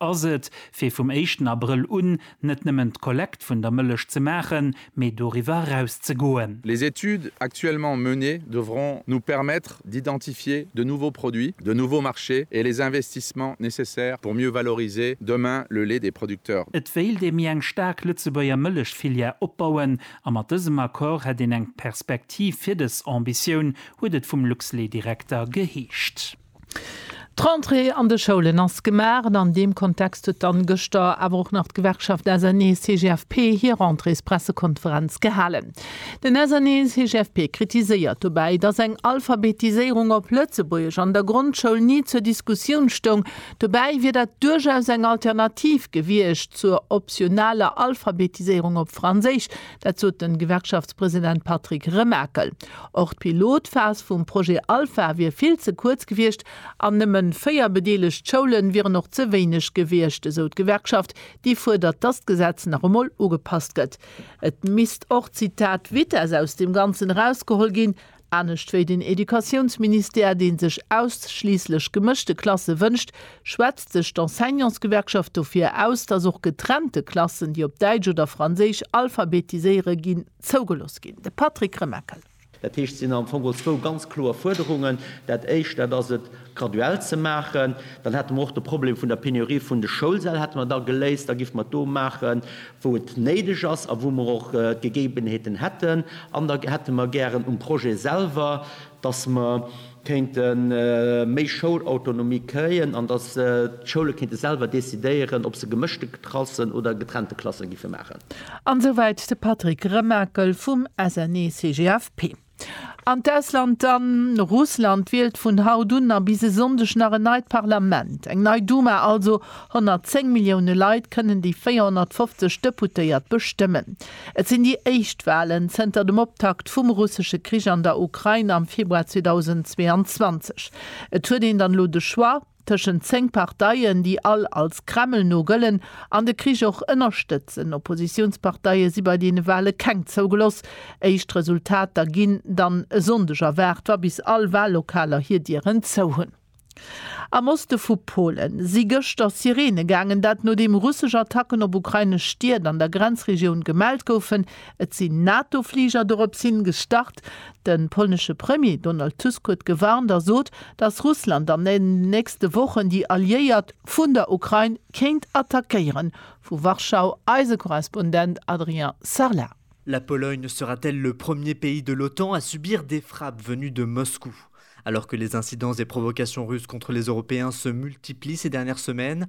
Ass et, fir vum éischten Abrëll un net nëmmen d'Kollekt vun der Mëllech ze maachen, mee doriwwer eraus ze goen? Les études actuellement menées devront nous permettre d'identifier de nouveaux produits, de nouveaux marchés et les investissements nécessaires pour mieux valoriser demain le lait des producteurs. Et wéilt ee méi eng staark Lëtzebuerger Mëllechfilière opbauen a mat dësem Accord hätt een eng Perspektiv fir dës Ambitioun, huet et vum Luxlait-Direkter geheescht. D'Rentrée an de Schoulen ass gemaach an an deem Kontext huet dann gëschter awer och nach d'Gewerkschaft SNEE-CGFP hir Rentréespressekonferenz gehalen. Den SNEE-CGFP kritiséiert dobäi, dass eng Alphabetiséierung op Lëtzebuergesch an der Grondschoul ni zur Diskussioun stoung. Dobäi wier dat duerchaus eng Alternativ gewiescht zur optionaler Alphabetiséierung op Franséisch, Dat sot de Gewerkschaftspresident Patrick Remakel. Och d'Pilotphas vum Projet Alpha wier vill ze kuerz gewiescht an nëmme véier bedeelegt Schoule wieren och ze wéineg gewiescht, esou d'Gewerkschaft, déi fuerdert, datt d'Gesetz nach emol ugepasst gëtt. Et misst och, Zitat, Vitess aus dem Ganzen erausgeholl ginn. Anescht wéi den Educatiounsministère, dee sech ausschliisslech gemëschte Klasse wënscht, schwätzt sech d'Enseignantsgewerkschaft dofir aus, datt och getrennte Klassen, déi op Däitsch oder Franséisch alphabetiséiere ginn, zougelooss ginn. De Patrick Remakel. Dat heescht, et sinn am Fong geholl zwou ganz kloer Fuerderungen. Dat Éischt, dat ass et, graduell ze maachen, dann hätte mer och de Problem vun der Penurie vun de Schoulsäll hätte mer da geléist, da géife mer et do maache wou et néideg ass a wou mer och d'Gegebenheeten hätten an da hätte mer gären um Projet selwer, datt mer kéinte méi Schoulautonomie kréien an datt d'Schoule kéinte selwer decidéieren, ob se gemëschte Klassen oder getrennte Klasse géife maachen. An esouwäit de Patrick Remakel vum SNE-CGFP. An d'Ausland dann, Russland wielt vun haut un a bis e Sonndeg nach en neit Parlament, eng nei Duma also. 110 Millioune Leit kënnen déi 450 Deputéiert bestëmmen. Et sinn déi éischt Walen zënter dem Optakt vum russesche Krich an der Ukrain am Februar 2022. Et huet een dann elo de Choix. Tëschent 10 Parteien, déi all als Kreml no gëllen an de Krich och ënnerstëtzen. Oppositiounsparteie si bei deene Wale keng zougeloss. Éischt Resultater ginn dann e Sonndeg erwaart, wa bis all Wallokaler hir Dieren zou hunn. Am Oste vu Polen si gëschter Sireene gaangen, dat nodeem russesch Attacken op ukrainesch Stied an der Grenzregioun gemellt goufen. Et sinn NATO-Fliger dorops hin gestart. De polnesche Premier Donald Tusk huet gewarnt a sot, datt Russland an den nächste Wochen déi Alliéiert vun der Ukrain kéint attackéieren. Vu Warschau eise Korrespondent Adrien Sarlat. La Pologne sera-t-elle le premier pays de l'Otan à subir des frappes venues de Moscou? Alors que les incidents et provocations russes contre les Européens se multiplient ces dernières semaines,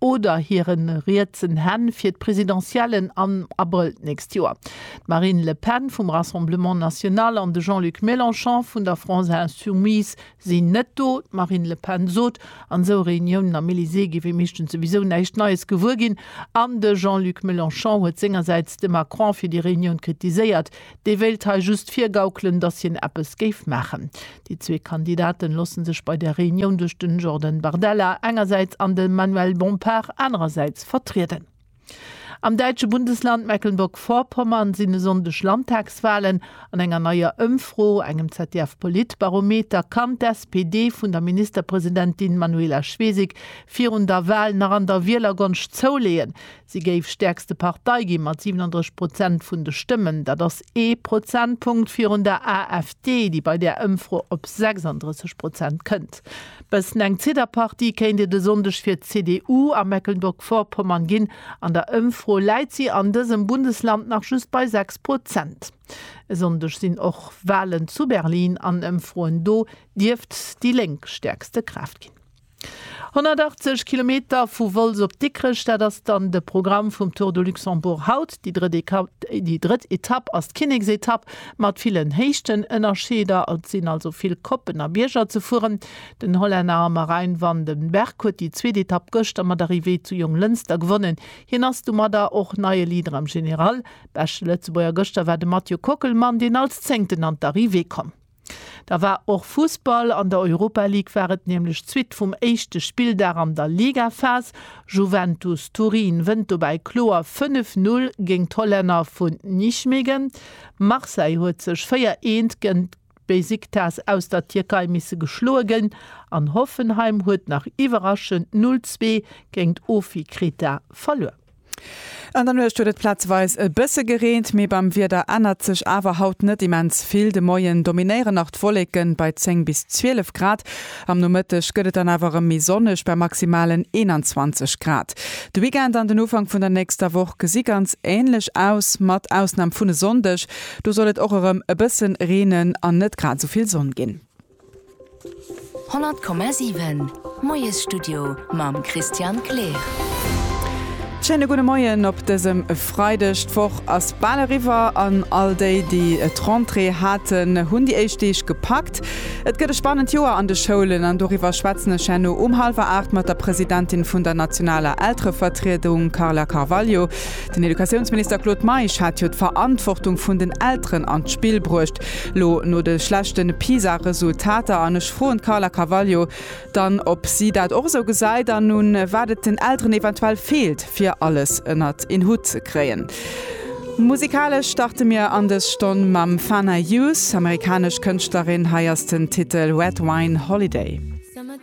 oder hire rietsen Hänn fir d'Presidentiellen am Abrëll d'nächst Joer. D'Marine Le Pen vum Rassemblement National an de Jean-Luc Mélenchon vun der France Insoumise sinn net do. D'Marine Le Pen sot, an esou Reuniounen am Elysée géif ee meeschtens souwisou näischt Neies gewuer ginn. An de Jean-Luc Mélenchon huet sengersäits de Macron fir déi Reunioun kritiséiert, Dee wéilt hei just virgaukelen, datt hien eppes géif maachen. Déi zwee Kandidaten loosse sech bei der Reunioun duerch den Jordan Bardella engersäits an de Manuel Bompard anerersäits vertrieden. Am däitsche Bundesland Mecklenburg-Vorpommern sinn e Sonndeg Landtagswahlen. An enger neier Ëmfro, engem ZDF-Politbarometer, kann d'SPD vun der Ministerpresidentin Manuela Schwesig virun der Wahl nach an der Wielergonscht zouleeën. Si géif stäerkste Partei gi mat 37 Prozent vun de Stëmmen. Dat ass ee Prozentpunkt virun der AfD, déi bei där Ëmfro op 36 Prozent kënnt. Bëssen eng Zidderpartie kéint et e Sonndeg fir d'CDU a Mecklenburg-Vorpommern ginn. An der Ëmfro läit si an dësem Bundesland nach just bei 6 Prozent. E Sonndeg sinn och Walen zu Berlin an Ëmfroen do dierft déi Lénk stäerkste Kraaft ginn. 180 Kilometer vu Wolz op Dikrech, dat ass dann de Programm vum Tour de Luxembourg haut. Déi drëtt Etapp ass d'Kinneksetapp mat villen Héichtenënnerscheeder. Et sinn also vill Koppen a Bierger ze fueren. Den Hollänner Marijn van den Berg huet déi zweet Etapp gëschter mat Arrivée zu Jonglënster gewonnen. Hien ass domadder och neie Leader am General. Beschte Lëtzebuerger gëschter war de Mathieu Kockelmann, deen als Zéngten an d'Arrivée komm. Da war och Fussball, an der Europa League war et nämlech d'Suite vum éischte Spilldag an der Ligaphas. Juventus Turin wënnt dobäi kloer 5, 0 géint d'Hollänner vu Nijmegen. Marseille huet sech 4, 1 géint Besiktas aus der Tierkei misse geschloe ginn an Hoffenheim huet nach iwwerraschend 0, 2 géint OFI Kreta verluer. An der Nuecht huet et plazeweis e bësse gereent, mee beim Wieder ännert sech awer haut net immens vill. De Moien dominéieren nach d'Wolleken bei 10 bis 12 Grad, am Nomëtteg gëtt et dann awer erëm méi sonneg bei maximalen 21 Grad. De Weekend an den Ufank vun der nächster Woch gesi ganz änlech aus, mat Ausnam vun e Sonndeg, do soll et och erëm e bësse reenen an net grad esou vill Sonn ginn. 100,7 Moiesstudio mam Christian Kleer. Schéine gudde Moien op dësem Freideg. D'Woch ass bal eriwwer an all déi, déi et Rentrée haten, hunn déi éischt Deeg gepackt. Et gëtt e spannend Joer an de Schoulen an doriwwer schwätzen ech herno um hallwer aacht mat der Presidentin vun der nationaler Elterevertriedung Carla Carvalho. Den Educatiounsminister Claude Meisch hat jo d'Verantwortung vun den Elteren an d'Spill bruecht elo no de schlechten PISA-Resultater. An ech froen d'Carla Carvalho dann, ob si dat och esou gesäit an un wat et den Elteren eventuell feelt, fir alles ënnert een Hutt ze kréien. Musikalesch starte mir an dës Stonn mam Fana Youth, amerikanesch Kënschtlerin. Hei ass den Titel Red Wine Holiday.